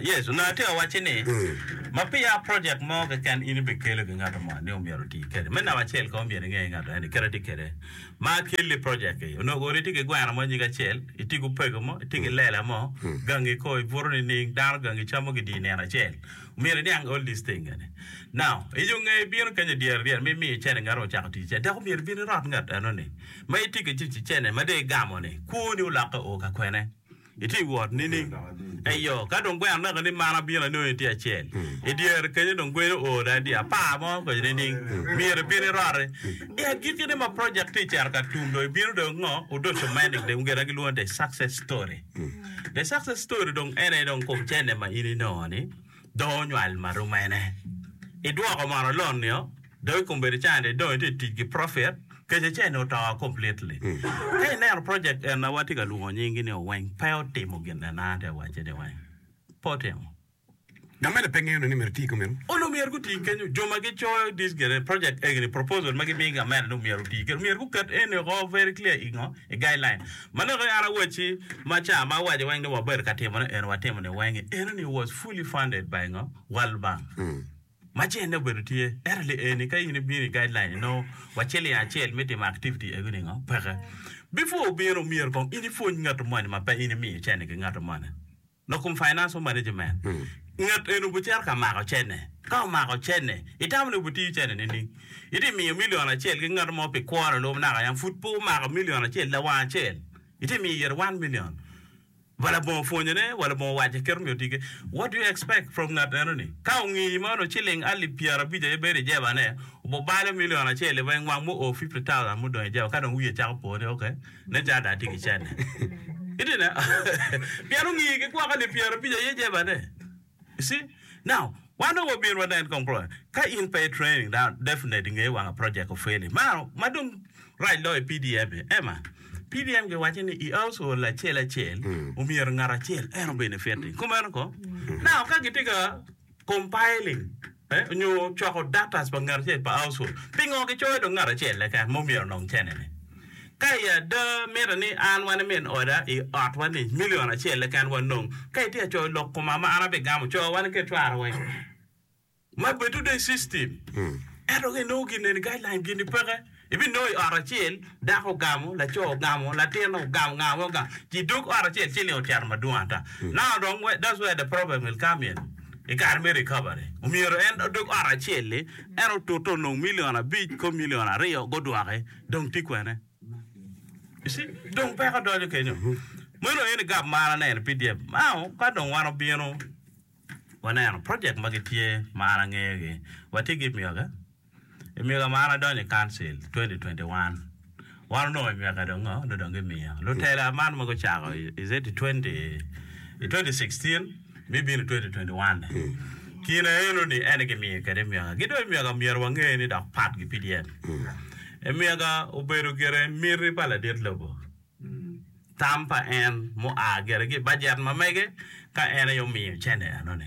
Yecu onongo tye ka wacci ni, Ma peya projek mo keken in ibikelo ki ngat mo ni omyero oti kwede. Me namba acel kong myero inge ni ngat eni kite tye kwede ma kelli projek-ki. Onongo kong itye ki gweno mo nyige acel, itye ki opego mo, itye ki lela mo, gangi kong ibuto nining, dano gangi icamo kidye nino acel. Myero iniang all these things eni. Now, iyo nge ibino kenyo dyere ryeni ma imiyo icene ngato ocako tic icene dok omyero ibin irot ngat enoni. Ma itye ki tic icene ma dong igamo-ni, kwoni olokke o ka kwene? Itye i wot nining? Eyo, ka dong gwe anaka ni man abino anongi tye acel. I dyere kenyo dong gweni oo da, dye apar mo kenyo nining? Myero ibin iroti. I agikki-ni ma project tye cito ka tum dong ibino dong ngo? Odoco Manning dong gin ma gilwongo ni The Success Story. The Success Story dong en aye dong kom cene ma in inongo-ni dong onywal ma rum ene. Idwoko mono loan-nio? Dong i kombeddi can ni dong itye tic ki profit kec acel ni oto completely. Ka ineno project en ma watye ka lwongo nying gi ni Oweng pe otimo gin en a atye wace ni weng pe otimo. Ngat mene pe ngeyo ni myero iti kumeno. Onongo myero guti kenyo jo ma gi coyo this gene project egini proposal ma gi mi ngat mene ni myero oti kede myero guket eni oko very clear ingo i guideline ma nongo en awacci ma ca ma awaco weng ni wabedo ka timone eni watimo ni weng-ngi eno ni was fully funded by ngo World Bank. Ma cene obedo tye, ento li eni ka in ibino i guideline inongo waciling acel me timo activity egi ningo? Peke. Before obino myero kong in ipwony ngato moni ma pe in imiyo cene ki ngato moni. Lok kom financial management, ngat eni obicito ka mako cene, ka omako cene, itamo ni obitiyo cene nining? Iti miyo million acel ki ngato mo pi kwone lub naka yam pud pe omako million acel lawang acel, iti miyo ite one million. Wa labongo pwonyone, wa labongo wacce, kit omiyo tige. What do you expect from ngat enoni? Ka ongiyi mano ciling alip pyera abic aye bedo i jebane, obo balo milion acel i weng wang mu o fifty thousand mu dong i jeba ka dong wiye cako po ni okay, nen calo dong atye ki cente. Pien ongiyi ki gwoko alip pyera abic aye jebane. You see? Now, wan dong wabino wanen kong project. Ka in pe i training, now definitely ingeyo wanga project ofeli. Maro, ma dong rac loyo i PDM e, Emma, PDM giwaco ni i household acel acel, omyero ngat acel en o benefit-ti. Kumeno kong. Now, ka gitye ka compiling nyo cwako daktac pa ngat acel pa aucul, pingo gicoyo dong ngat acel keken ma omyero onong cene-ni? Ka i ada, mitte ni an wa nimin oda i otwa-ni milion acel keken wanong. Ka itye ka coyo lok koma ma an abigamo coyo wa nikech cwara weng, ma bedo dong i system, ento ka inongo gin eni, guideline gini peke. Ibinongo i ot acel, dako ogamo, laco ogamo, latin ogamo nga mo ga ci dog ot acel ci ling ocito madwong ata. Now dong that's where the problem will come in i kare me recovery. Omyero en odog ot acel ni en otute onong million abic kop million aryo gudwoki dong tye kwene? You see dong peko donyo kenyo. Meno aye ni gab mar aneno i pdf. Now ka dong wan obino waneno project ma gitye ma an angeyo gi, watye ki miyogi? I myega ma an adonyo i Council 2021, wan onongo i myeka dong ngo nyo dong gimiyo lutela man ma gucako i 2016 me bino 2021 kine eno ni en aye gimiyo kwede myeka. Ki dong i myeka myero wange ni dok pat gi PDM. I myeka obedo gire miti pa ladit lobo, tam pa en mua gire ki i bajet ma mege ka en aye omiyo cene eno ni.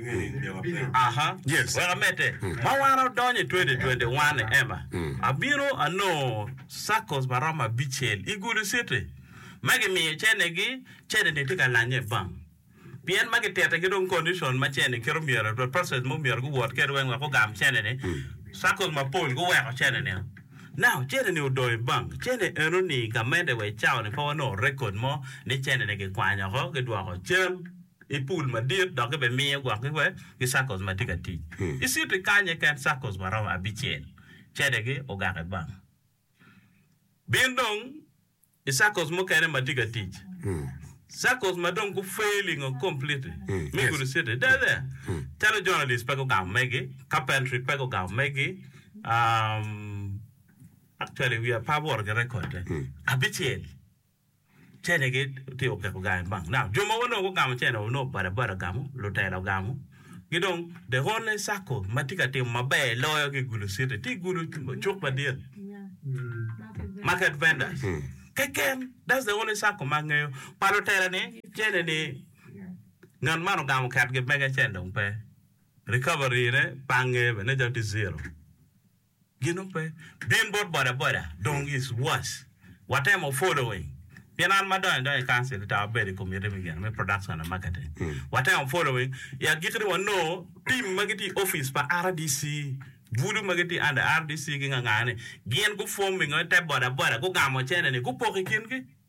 Wek amedde, ma wan odonyo i 2021, Emma, abino anongo circles ma romo abicel i gudi citi ma gimiyo cene-gi, cene-ni tye ka lanye bang. Pien ma gititigi dong condition ma cene kit omyero, the process ma omyero guwot kwede weng wek gugam cene-ni, circles mapol guweko cene-ni o. Now, cene-ni odong i bank. Cene eno-ni, gamente wa i cawa-ni pe wanongo record mo ni cene-ni gikwanyo oko, gidwoko cen. i pul madit dok gibimiyo gwokgi wek gicakos ma tye ka tic i citi kany keken cakos ma romo abicel cedegi ogake bang bin dong i cakos mukene ma tye ka tic cakos ma dong gu failing o completely me gudo citi they're there calo journalist pe gugamo megi carpentry pe gugamo megi actually wiya pe awoto ki record-de abicel. Cenegi tye okeko gangi bang naka. Jo ma onongo gugamo cene onongo bada bada gamo, lutela ogamo, ki dong the only circle ma tye ka timo maber loyo ki Gulu City tye Gulu cuk madit, market vendors keken that's the only circle ma angeyo. Pa lutela ni cene ni ngat man ogamo oketgi mege cene dong pe, recovery ne pe angeyo bene nen calo tye zero. Ginu pe bin bot boda boda dong is worse watemo following pien an ma donyo donya i council ita wabedo i committee me gin me production and marketing watemo following i agikki ni wanongo team ma gitye i office pa RDC bulu ma gitye under RDC gingangane gin gu forming-o ite boda boda gugamo cene ni gupoko i kingi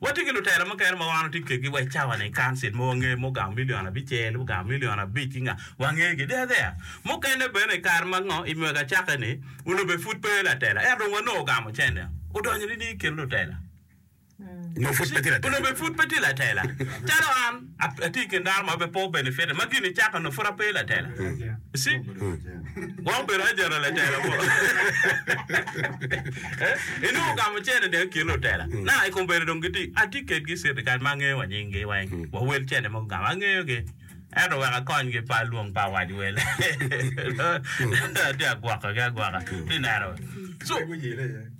Watye ki lutela mukene ma wan watye kwedgi wa i cawa-ni i Kancil ma wangeyo ma ogamo milion abicel, ogamo milion abic ki nga, wangegi deya deya. Mukene bene i kare ma ngo, i mwaka acakki-ni, Ulobe pud pe aye latela, ento dong wanongo ogamo cente, odonyo nining i kin lutela? Nyo pud pe tye latela? Ulobe pud pe tye latela calo an. Atye i kin dano ma pe po benefit ma gin icaka onongo pud ape latela. You see? Gwok bedo ajana latela mo. Eh, inongo ka mucene dong i kin lutela. Na, i kombeddi dong giti, atye kedgi i cirtical ma angeyo wa nyinggi weng, wa wel cene mogo gamo, angeyogi. Ento wek akonygi pe alwong pe awac wel. Atye agwokogi agwoka. Ti neno. So,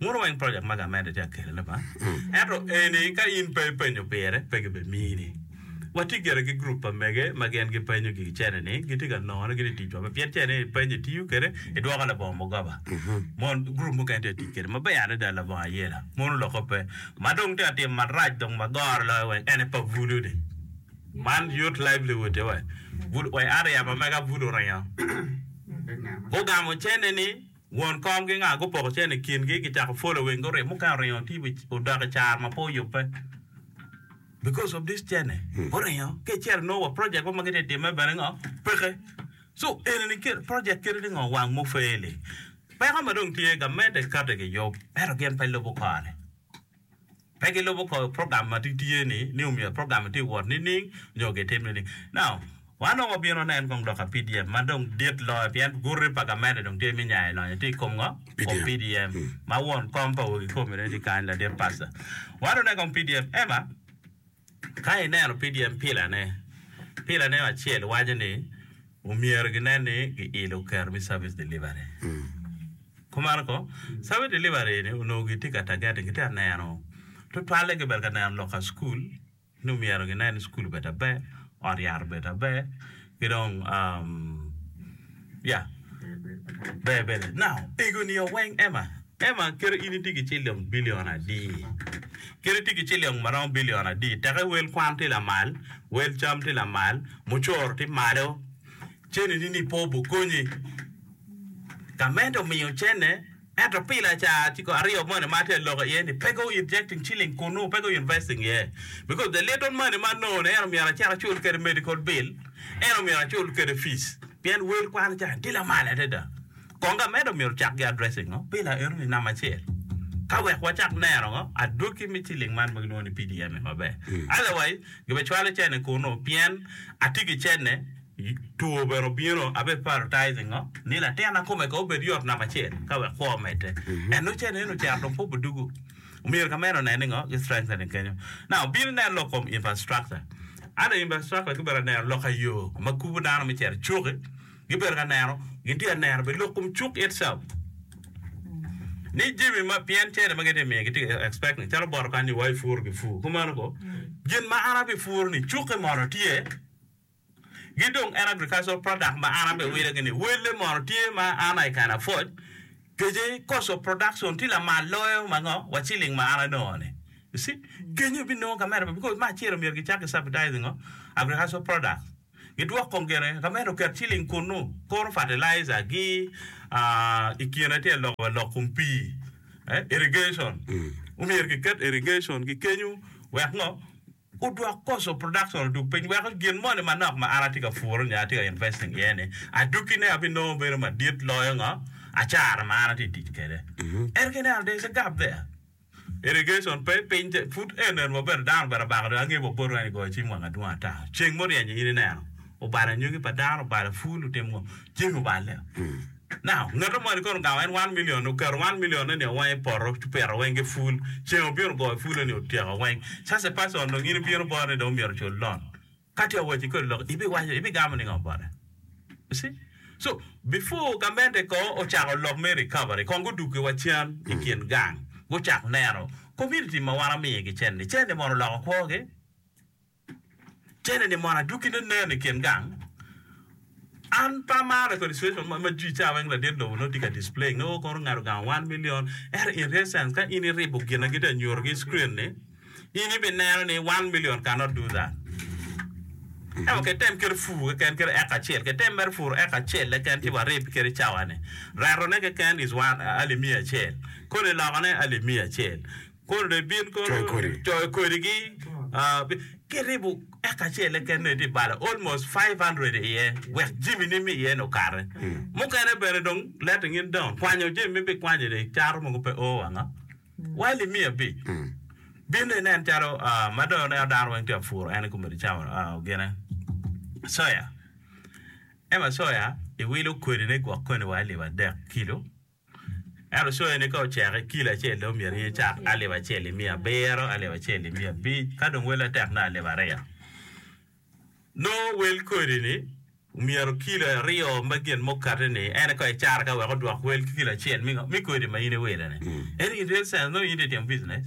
Muno weng project magi amedde tye ka kelone ba, ento eni ka in pe ipenyo pire pe gibe mini. Watye gire ki group pa mege ma gin gipenyo gigi cene ni gitye ka none gini ticwa pe pien cene ni ipenyo itiyo kede idwoko labongo mugoba mon group mukene tye ka tic kede maber adada labongo ayela muno loke pe ma dong tye ka timo marac dong ma goro loyo weng ene pa bulu ni man youth livelihood tye weng bulu weng aryema mege bulu ringo gugamo cene ni Won kom ki nga gupoko cene i kin gi gicako folo weng guringo mukene oringo tye odok i caro ma pe oyube because of this cene guringo ki cel nongo wa project mo ma gitye time bene ngo peke so enini kit project kit ni ngo wang mo fail i peko ma dong tye gamente kati giyub ento gin pe lubo kore. pe gilubo ko program ma tye ni ni omyero program ni tye wot nining nyo gitim nining. Now, wan dong wabino nen kong lok pa PDM ma dong dit loyo pien guti pa gamente dong tye me nyayo lonyo tye i kom ngo? Kom PDM ma won kom pa wegi kome-ni tye kany ladit pasta. Wan dong nen kong PDM ema. Ka ineno pdm pilane, pilane acel waco ni omyero ginen ni giilo kero me service delivery. Kumeno ko, service delivery ni onongo gitye ka targeting, gitye ka neno tutwalle gibedo ka neno lok ka cukul ni omyero ginen ni cukul obed maber, ot yat obed maber, ki dong ya ber bene now ego nio weng Emma Emma kit in itye ki ciliong bilion adi kit itye ki ciliong ma romo bilion adi teke wel kwan tye lamal wel cam tye lamal mucoro tye malo cene ni ni pe obukonyi gamente omiyo cene Ento pi lacar ciko aryo moni ma atye ka loko iye ni, pe go injecting ciling kun nongo pe go investing iye. Because the little money ma anongo ni en omyero acit acul kwede medical bill, en omyero acul kwede fees. Pien wel kwano ca tye lamal adada. Kong amedo myero ocak gi addressing o bila eno ni namba acel. Ka wek wacak neno ngo adwogi me ciling man ma gilwongo ni PDM-mi maber. Otherwise, gibe cwalo cene kunu pien atye ki cene. Two bene obino, abe prioritizing ngo ni latin na kome kong obed yot namba acel ka wek kwo omedde. And nongo cen eno ocito dong pud odugu. Omyero ka meno onen ni ngo gi strengthening kenyo. Now obino nen lok kom infrastructure. Under infrastructure ki bedo ka neno lok ayo ma kubu dano me cito icuki, gi bedo ka neno, gin tye ka neno bene lok kom cuk itself. Ni jimi ma pien cene ma gitye ka miyo gitye ka expecting calo bot okanni wa ipuru ki pur kumeno kong. Gin ma an abi puru ni cuki mono tye. gi dong en agricultural product ma an abe wile gini welle mono tye ma an I can afford kece cost of production tye lamal loyo ma ngo wa ciling ma an anongo ni you see kenyo ibi nongo ka medo because me acel myero gi cak ki subsidizing ngo agricultural product gi dwok kong gene ka medo oket ciling kunu koro fertilizer gi ikine tye lok wa lok kom pii irrigation omyero gi ket irrigation gi kenyo wek ngo Gudwok Coastal Production odug piny weko gin moni manok ma an atye ka puro nyo atye ka investing iye ni adukkine abinongo bedo madit loyo ngo? Acara ma an atye ka tic kwede. Ento ka ineno there is a gap there. Irrigation pe, piny tye, pud enen wabedo dano obed abaka dong angeyo wa botwa ni goyo cim wang adwong ata. Ceng muryeny-nyi in ineno obalo anyogi pa dano, obalo pul, otimo ngo? Jami oballe. Now, ngato moni kono ogango en one million, oketo one million-ne ni owang i poto, ci opito weng ki pul. Ceng obino ogoyo pul-le ni otyeko weng. Such a person dong in ibino bot ni dong omyero ocul loan. Ka ti awacci kodi lok, ibiwaco, ibigamo ningo bote? You see? So, before gamente ko ocako lok me recovery, kong guduggi wa cen i kin gang, gucak neno, community ma wan amiyogi cen-ni, cen-ni mono oloko kwogi? Cene ni mono adwogi ne nen i kin gang. An pe amara kodi situation ma jwi ca weng ladit lobo nongo tye ka display nge o kono ngato gang one million ento in real sense ka in i ribo gina gitye ka nyuto ki i screen ni in i bi neno ni one million can not do that. Ento ke tem kit fur keken kit eka acel ke tem mere fur eka acel keken ci wa rib kit i cawa ni. Reto ne keken is one alip miya acel. Kodi loko ne alip miya acel. Kono dong ibin kono coyo kodigi kiribo eka acele kene tye balo almost five hundred iye wek jami ni me iye ni okare mukene bene dong let ngin dong kwanyo jami me bikwanyo dong icato mogo pe o wanga while imiyo abic bin dong inen calo ma dong aneno dano weng tye ka puro en kome cawa gine soya ema soya iwilo kodine gwok koni wa alip adek kilo. Ento coyo ni ka oceke kilo acel dong myero in icak alip acel ki miya abiro, alip acel ki miya abic, ka dong wele tek dong alip aryo. Nongo wel kodi ni myero kilo aryo me gin ma okati ni en aye kong icaro ka wek odwok wel ki kilo acel me ngo? Me kodi ma in iwile ni. Ento in real sense nongo in tye ka timo business.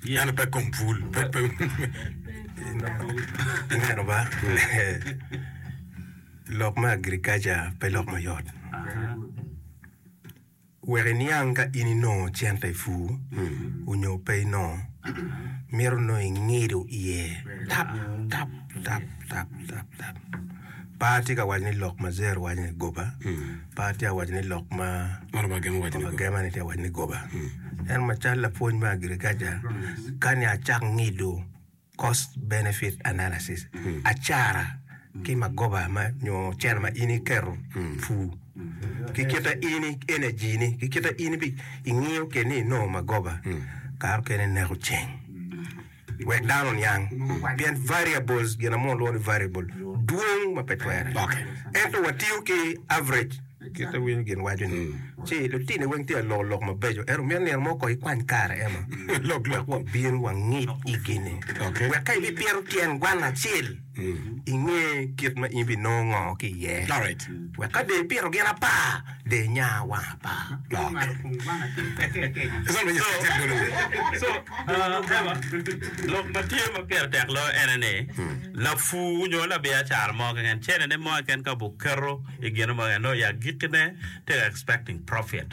Yene pe kom pul. Pe pe. Ineno ba? Lok me agriculture pe lok mayot. Wek iniang ka in inongo cente i pur onyo pe inongo, mito nongo ingido iye tap tap tap tap tap tap. Par tye ka waco ni lok ma Zer waco ni goba. Par tye awaco ni lok ma Ngolo ma gema waco ni goba. gema ni tye awaco ni goba. En macal lapwony me agriculture kani acak ngido cost benefit analysis acara ki magoba ma nyo cel ma in iketo pu ki kita in energy ni ki kita in bi ingiyo keni inongo magoba kare okene ineko ceng. wek dano oniang, pien variables, gin mo olwongo ni variable, dwong ma pe twere lokke. Ento watiyo ki average, kit iwinyo gin waco-ni, ci lutini weng tye ka loko lok mabeco. Ento myero nino mo kong ikwany kare eno, wek wabin wangic igi-ni, wek ka ibipito tyen gwan acel, inge kit ma in binongo ngo ki iye, wek ka de ipito gin apa, de inya wang apa lok. So, Eva, lok ma tye ma pire tek loyo ene ni, lapur nyo labiacara mo keken, cenene mo keken ka obuketo i gine mo keken, nongo i agikkine tye ka expecting profit.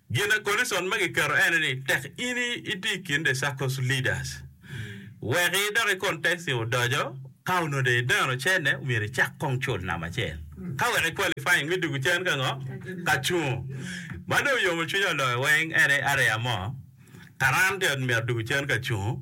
Gin a Conison ma giketo ene ni tek in iti i kin The Circle's Leaders, wek idok i kontesti odoco, ka onongo dong ideno cene, myero icak kong cul namba acel ka wek i qualifying me dwogo cen ka ngo? Ka cungo. Ma dong oyomo cwinya loyo weng ene areya mo, Karan ti ot myero dwogo cen ka cungo.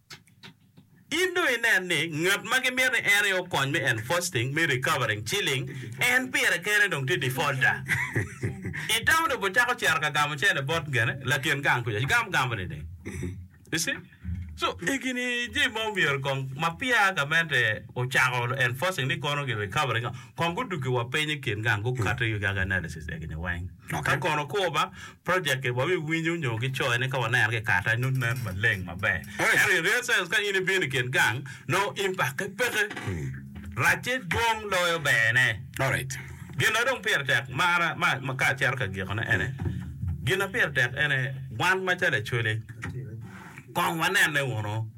In dong inen ni ngat ma gimito ni en aye okony me enforcing me recovering ciling, en pire kene dong tye defaulter. I tamo dong bot cako cito ka gamo cene bot gene lakin gang kuca gamo gamo ni ding. You see? So, egini jami ma omyero kong ma peer gamente ocako enforcing ni kono gi recovering-o, kong guduggi wa piny i kin gang, gukati gag analysis egini weng. Ka kono kur ma project-ti wa wi winyo nyo gicoyo ni ka waneno ki kata nyo nen maleng maber. Ento in real sense ka in ibino i kin gang nongo impakke peke. Racce dwong loyo berne. Alright. Gin ma dong pire tek mara ma ka acito ka gikone ene, gin ma pire tek ene wan macalo Acholi kong wanene wunu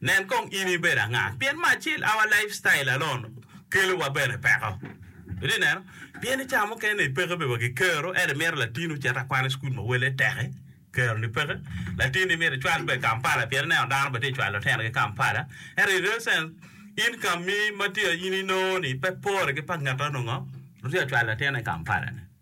Nen kong in ibedo anga. Pien me acel, our lifestyle alone kelo wa bene peko. Itye neno? Pien i cawa mukene ni peke bene wa ki kero, ento imito latin ocit akwana i cukul ma wele teke, kero ni peke. Latin ni myero icwal bene Kampala pien ineno dano bene tye cwalo lutino gi Kampala. Ento in real sense, income mi ma tye in inongo ni pe pore ki pa ngat onongo tye cwalo latin i Kampala ni.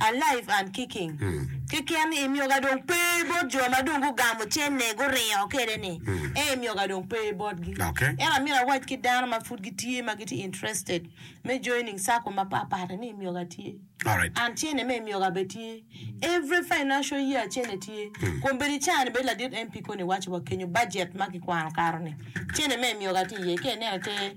Alive and kicking keken i myoga dong pe bot jo ma dong gugamo cene guringo kede ni ee i myoga dong pe botgi ento amyero awac ki dano ma pud gitye ma gitye interested me joining circle ma pat pat ni i myoga tye and cene me i myoga bene tye every financial year cene tye kun bene i caa ni bene ladit MP koni waco wa kenyo budget ma kikwano kato ni cene me i myoga tye iye ka ineno te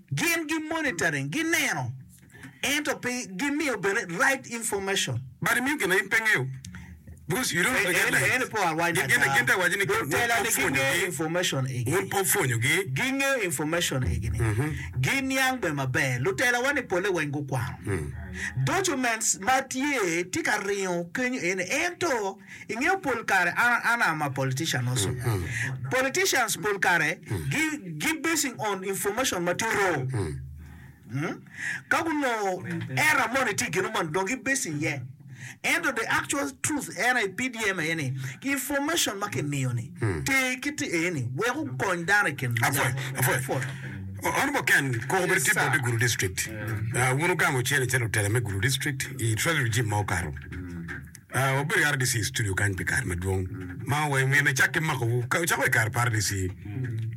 Gin gi monitoring, gi neno ento pe gi miyo bene right information. But imiyo gin na in pe ingeyo because you don't know the guidelines. Gin to awaco ni wun pe wupwonyo gi. Gi ngeyo information egi ni gi niang bene maber. Lutela wa ni pole weng gu kwano documents ma tye tye ka ringo kenyo eni ento Ingeyo pol kare an an am a politician also politicians pol kare gi gi basing on information ma tye wrong ka gunongo error moni tye gino moni dong gi basing iye ento the actual truth en aye PDM aye ni information ma kimiyo ni ter ki te eni wek okony dano i kin Apwony, apwony. pwot. O- Honorable Ken, koko bedo tye Yes, bot sir. i Gulu District. Ah, wun wugamo cene calo lutela me Gulu District i Treasury Regime ma okato. Wabedo i RDC i studio kany pi kare madwong ma wa i ngeye me cakke makowu. Ka ocako i kare pa RDC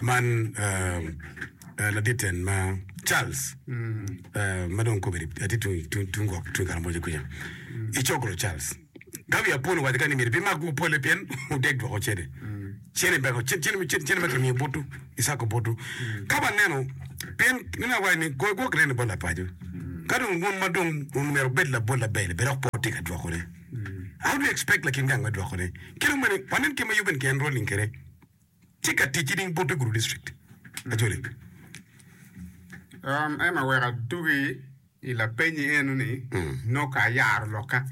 man, eh, eh, laditen ma Charles, eh, ma dong kobedi atye tung, tung, tung gwok tung Karamoja kuca, i cokro Charles. Gavi Apon owaco kany ni myero bimak-gu opolle pien odeg dwoko cene. Cene beko, cen, cene, cene, cene ma kimiyo butu, Isako butu. Ka waneno, pien nino awaco ni goyo gwok nen ni bot lapaco. Ka dong wun ma dong wun myero wubed labol label, bedok pe wutye ka dwokone. How do you expect lakin gang me dwokone? Ki dong bene, wanen kit ma Yuben ki enrolling kwede. Tye ka tic ki ding butu i Gulu District. Ajoli. Um, Emma wek adugi. I lapenyi enoni, nongo ayaro lokka.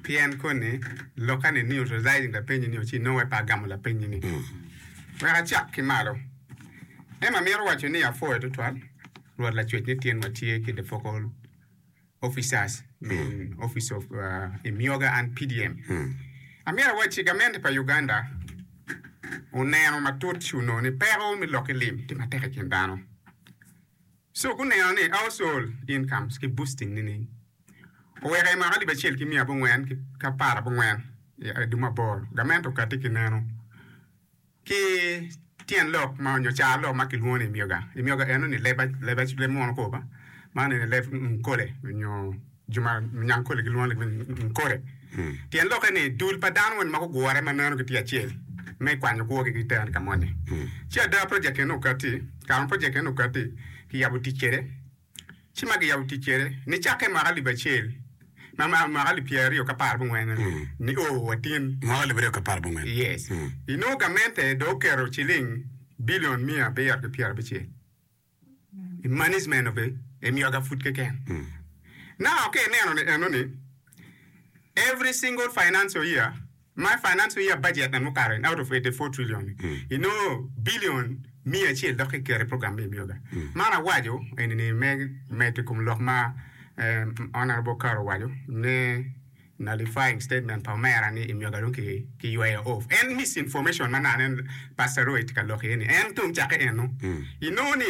Pien koni, lokka ni nio residing lapenyi nio ci nongo pe agamo lapenyi ni. Wek acak ki malo. Em amito waco ni apwoyo tutwal Rwot Lacwec ni tyen wa tye ki the focal officers me office of Imyoga and PDM. Amito awaci gamente pa Uganda oneno matut ci onongo ni peko me lok ki lim tye matek ikin dano. Cuk oneno ni Household Incomes ki Boosting nining? Oweko i mwaka alip acel ki miya abongwen ki apar abongwen i aduma aboro, gament okati ki neno ki tyen lok ma onyo car lok ma kilwongo ni imyoga. Imyoga eno ni leb, leb, leb mono koba, man eni leb nkole onyo Jo ma Munyankole gilwongo lok meno ni Nkole. Tyen lokke ni dul pa dano moni ma gugure ma meno gitye acel me kwanyo kwogi ki tero ni ka moni. Ci ada project eni okatti, kare ma project eni okatti, kiyabo tic kwede. Ci ma kiyabo tic kwede, nicakke i mwaka alip acel, ma ma mwaka alip pyeraryo ki apar abongwen meno, nio watin. Mwaka alip aryo ki apar abongwen. Yes. Inongo gamente dong oketo ciling bilion miya abiro ki pyerabicel. Imanis meno pe emiyo ga pud keken. Now ka ineno ni eno ni every single financial year my financial year budget na mukato in out of 84 trillion ni inongo billion miya acel dok kiketo i program ma imiyo ga. Man awaco eni ni me medo i kom lok ma eh, honorable Karo owaco ne Nullifying statement pa omera ni Imyoga dong ki yweyo off en misinformation ma nano en Pastor Roy tye ka lok iye ni en tung cakke eno inongo ni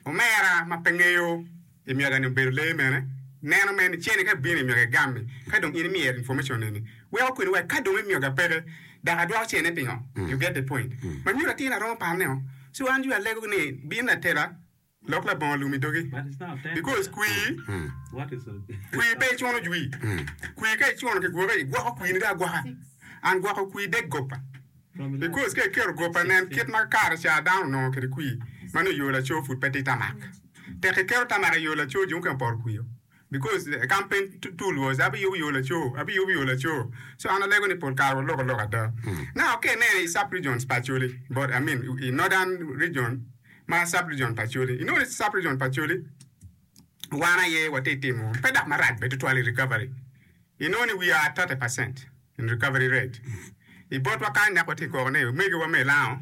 omera ma pe ngeyo Imyoga ni obedo lee mene neno mere ni cene ka bino Imyoga egami ka dong in imyero information eni weko kwene wek ka dong Imyoga peke dok adwoko cene pingo you get the point ma nyuto atir aromo paneo so an you alego ni bino latela Lok labongo lum i dogi, because kwir kwir pe icuno jwi. Kwir ka icuno ki gwoki, igwoko kwir ni dong agwoka. And gwoko kwir dek gopa. Because ka iketo gopa nen kit ma kare ca dano onongo kede kwir ma nongo yoo laco pud pe tye tamak. Tek iketo tamak iyo laco jo mukene opoto kwir o. Because the campaign tool was abiyubo yo laco, abiyubo yo laco. So an alego ni pol kare waloko lok ada. Now ka ineno i sub regions pa Acholi, but I mean i northern region ma sub region pa Acholi, inongo ni sub region pa Acholi wan aye watye timo pe dok marac bene tutwal i recovery. Inongo ni we are 30 percent in recovery rate. I botwa kany dok watye koko ni omegiwa me Lango,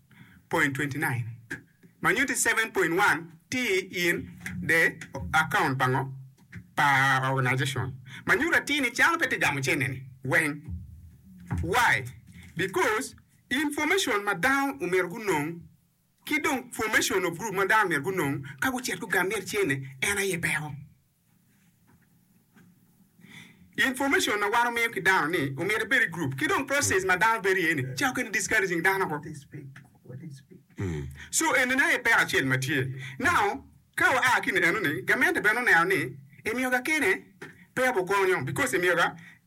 9.29 ma nyutti 7.1 ti in the account pa ngo? Pa organization ma nyuto atir ni cano pe ti gamo cene ni weng. Why? Because information ma dano omyero gunong ki dong formation of group ma dano myero gunong ka gucit gugamer cene en aye peko. Information ma wan omiyo ki dano ni omyero ebed i group ki dong process ma dano bedo iye ni ca okene discouraging dano woko. So enini aye peko acel ma tye. Now ka wa a ki eni enoni gamente bene oneno ni emiyo ga kene pe abu konyo because emiyo ga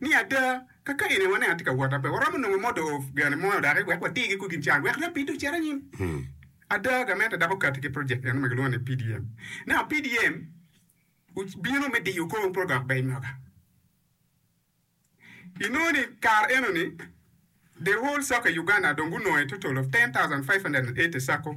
ni ada, ka kayene wan en tye ka wot, pe waromo nongo modo gene mo odaki wek watirgi ku gin can wek lapidde ocit anyim. Ada, gamente dok okatti ki project meno ma gilwongo ni PDM. Naka PDM obino me diyo kor pe odok bene moka. Inongo ni kare eno ni the whole sacco i Uganda dong gunongo a total of ten thousand five hundred and eighty sacco.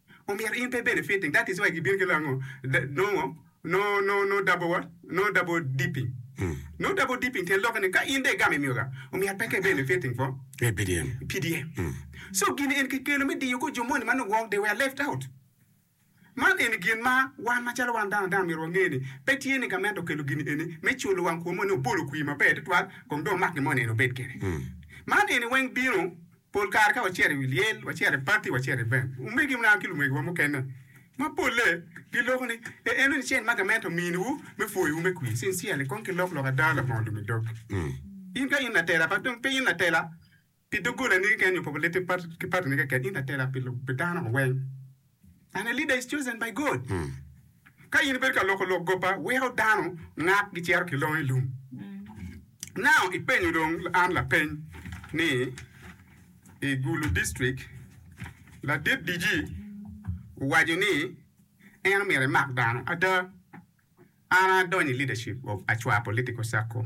Omyero in pe benefiting that is why gibino ki lango nongo no no no double no double dipping no double dipping tyen lokke ni ka in dong igamo imiyoga omyero pe ka i benefiting for PDM PDM so gin en ki kelo me diyo ko jo moni ma nongo wong they were left out man eni gin ma wan ma calo wan dano dano myero wange ni pe tye ni gament okelo gin eni me culo wang kwom moni obolo kwir maber tutwal kong dong omak gin moni en obed kede man eni weng bino Pol kare ka wacito i wi lyel, wacito i pati, wacito i vent, omegi muna ki lumegiwa mukene ma polle giloko ni, Ee, eno ni cen ma gamente ominiwu me pwoyowu me kwir. Sincerely, kong kilok lok ada labongo lumi dog. In ka in latela, kadi dong pe in latela pi doggolani keken nyo pa lulitti ki patini keken, in latela pi dano weng. And a leader is chosen by God. Ka in ibedo ka loko lok gopa, weko dano ngat gicito ki longo i lum. Now ipenyo dong an lapeny ni i Gulu District ladit DG owaco ni en omyero emak dano ada? An adonyo i leadership of Acwa Political Circle.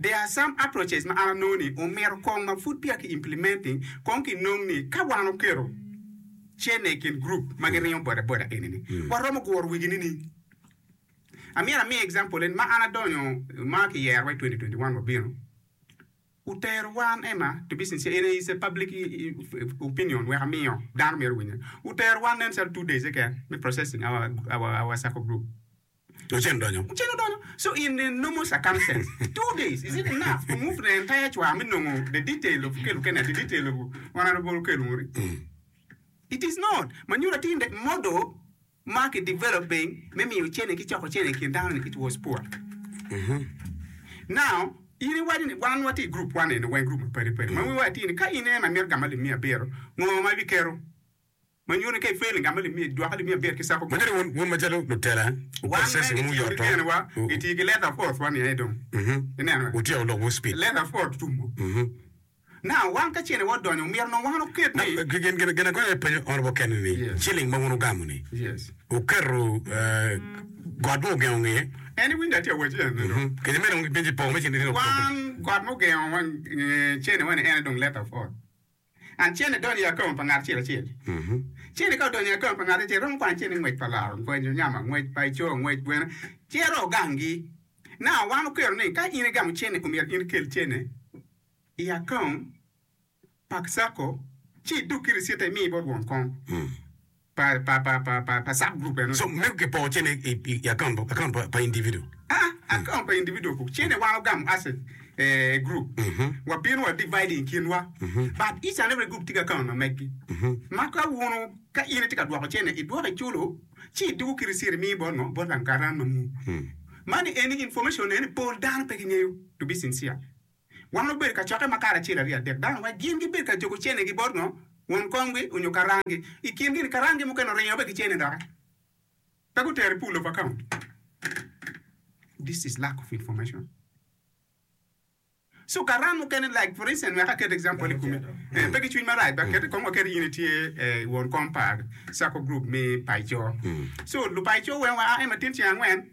There are some approaches ma an anongo ni omito kong ma pud peya ki implementing kong ki nong ni ka wan oketo cene ikin group ma gi ringo boda boda eni ni wa romo guro wigi ni ni amyero amiye example en ma an adonyo ma ki yero wa i 2021 wa bino otero wan ema to be sincere in is a public opinion wek amiyo dano myero owinye otero wan nen calo two days keken me processing our our our sacco group Oceno donyo. Oceno donyo. So in the normal circumstance, two days is it enough to move the entire cwa me nongo the detail of kelu kene, the detail of honourable okelu muri? It is not. Ma nyuto atir that model ma ki developing me miyo ocene ki coko ocene i kin dano ni it was poor. Now, in iwaco ni wan wati i group wan eni weng group mapadi padi ma wiwa atir ni ka in ema imito gamo lib miya abiro, ngo ma ibiketo? ma nyuto ni ka ipel ngat ma limi, dwoke limi abir ki cako Magi dong wun macalo lutela, wupot caci ma wuyoto, wutyeko lok wu speed. Gin agola aye penyo honorable Kenny ni ceiling ma wun wugamo ni wuketo got mo ogengo nge kece meno dong gipenyi poko me ceiling. Acel idonyo i akong pa ngat acel acel. Cene ka odonyo i akong pa ngat acel, romo kwano cene ngwec pa laro, ngwec nyama, ngwec pa icoo, ngwec gweno, cero ogangi. Na wan okwero ni ka in igamo cene omyero in ikel cene i akong pa sacco ci idug ki ricite imi bot won kong. pa sub group eno. So mego ki poo cene i account pa individual. Aa account pa individual ko cene wa ogamo as a group wa bino wa divide i kin wa but each and every group tye ki account ma megi ma ka wunu ka in itye ka dwoko cene i dwoko i culo ci i duku ki receipt i miyo bot ngo bot lang karan ma muu. Mani eni information eni pol dano pe gi ngeyo to be sincere. Wan wabedo ka cokke ma karacelo aryo adek dano ma gin gibedo ka juko cenegi bot ngo, won komgi onyo karanggi. I kingi ni karanggi mukene oringo be ki cene doki pe gutero i pool of account. This is lack of information. So karang mukene like for instance wek aket example i kome, eh, pe ki cwiny marac ba kete kong waket in itye eh, won kom pa sacco group me Paico. So luPaico weng wa a en ma tin ceng angwen,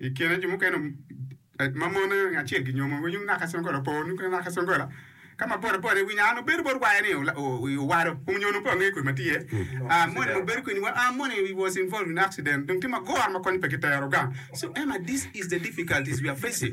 I kine jo mukene ma mon aye ngat acel ginyomo winyo ngat ka Songola opo nyo ngat ka Songola ka ma bot abota iwinyo an obedo bot waya ni owado kong nyo nongo pe wangeyo kodi ma tye ah moni ma bedo keni wa ah moni he was involved in accident dong tye ma goro ma kony pe kitero gang so Emma this is the difficulties we are facing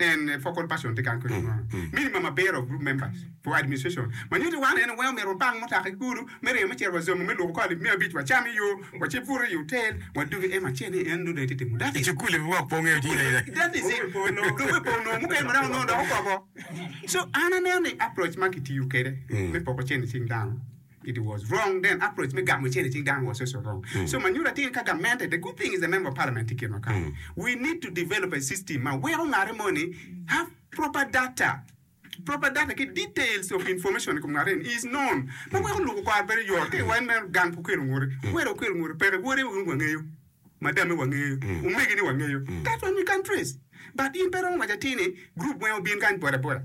En focal person tye kany kwede ma minimum abiro of group members for administration ma nyuto wan en weng omyero wapang mutoka ki kulu me ringo me cito wa Zombo me luko kor lib me abic wacam i yo wace buto i otel wadugi ema acel ni en nongo dong itye timo that is it that is it dong me pol nongo mukene maremo nongo dok okoko so an aneno ni approach ma kitiyo kwede me poko cente cing dano It was wrong then approach me gamo cene cing dano was also wrong so ma nyuto atir ka gamente the good thing is the member of parliament tye kit ma kare we need to develop a system ma weko ngate mo ni have proper data proper data ki details of information ikom ngate ni is known ma weko luku kwaro bedo yot ka iwaco ni meno gang pe okelo ngute were okelo ngute peke wode weng wangeyo madame wangeyo omege ni wangeyo that's what we can trace but in pe iromo waco atir ni group weng obin kany boda boda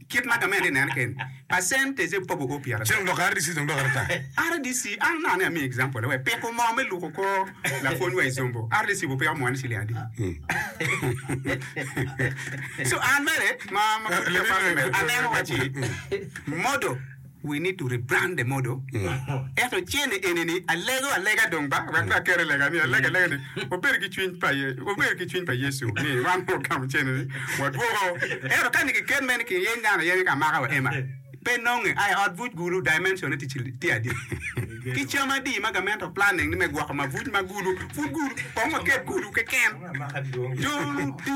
Kit ma gamente i nene keni, percentage e pogo kwo pyera Cen odoko RDC dong doko ata. RDC, an nongo ni amiyo example wek piko moo me luko kor lapwony wa Isombo, RDC bu piko moo ni ciling adi? So an mere ma ma pud pe aparo ni mere, aneno waci modo. We need to rebrande modo ento cene eni ni alego alega dong ba wek pe aker i lega ni alega alega ni wabedo ki cwiny pa wabedo ki cwiny pa Yecu ni wan wagamo cene ni wadwoko ento ka ni kiket me ni ki yeny dano aye ni ka maka wa Emma pe nonge a i ot buc gulu dimension ne ticci tye adi ki cam adi ma gamente planning ni me gwoko ma buc ma gulu pud gulu kong waket gulu keken jo luti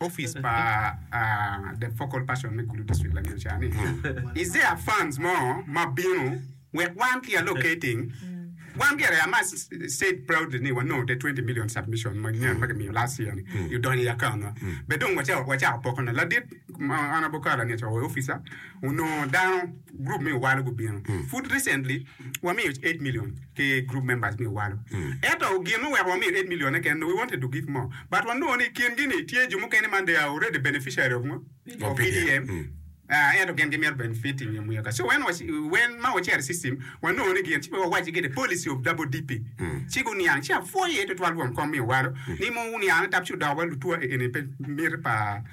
Opic pa The Focal Person me Gulu District lanyodo ca ni, Isaiah funds mo ma bino wek wan ki allocating wan gire I must said proudly ni wanongo te twenty million submission ma nyen ma kimiyo last year ni i odonyo i account wa be dong wacako poko ne ladit Honourable Carol Angeca oyo officer onongo dano group me Owalo gubino pud recently wamiyo eight million ki group members me owalo ento gin ma oweko wamiyo eight million ne kene no we wanted to give more but wanongo ni kin gi ni tye jo mukene man they are already beneficiary of ngo of PDM ah ento gin gimito benefiting nyo muyaka so when was when ma wacito i system wanongo ni gin ci pe wawac gi the policy of double DP ci guniang ci apwoyo iye tutwal rwom kom me owalo ni mo wuniang ni tap ci odokowa lutwa eni pe miti pa